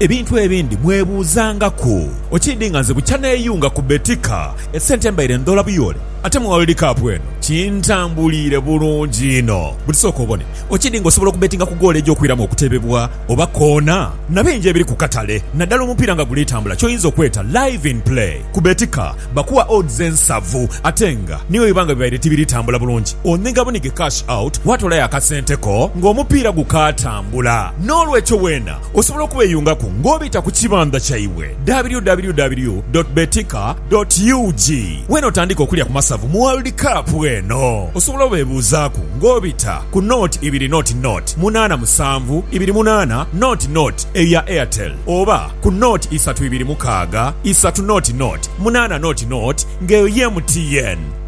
Ebintu ebindi mwebuuzangaku. Okiidhi nga nze bukya neeyunga ku Betika, esente mbaire ndhoola buyoole, ate mu World Cup eno kintambuliire bulungi inho. Buti sooka obone, okiidhi nga osobola okubetinga ku goolo egy'okwiramu okutebebwa oba koona na bingi ebiri ku katale naddala omupiira nga guli tambula ky'oyinza okweta Live in Play. Ku Betika bakuwa odds ensavu ate nga ni bwe biba nga bibaire tibiri tambula bulungi onhiga bunhige cash out waatoolayo akasente ko ng'omupiira gukaatambula. Noolwekyo weena Osobola okubeyungaku nga obita ku kibandha kyaibwe www dot betika dot ug wena otandike okulya ku masavu mu World Cup eno. Osobola obebuuzaaku nga obita ku nought ibiri nought nought munaana musanvu ibiri munaana nought nought eya Airtel oba ku nought isatu ibiri mukaaga isatu nought nought munaana nought nought nga eyo ye MTN.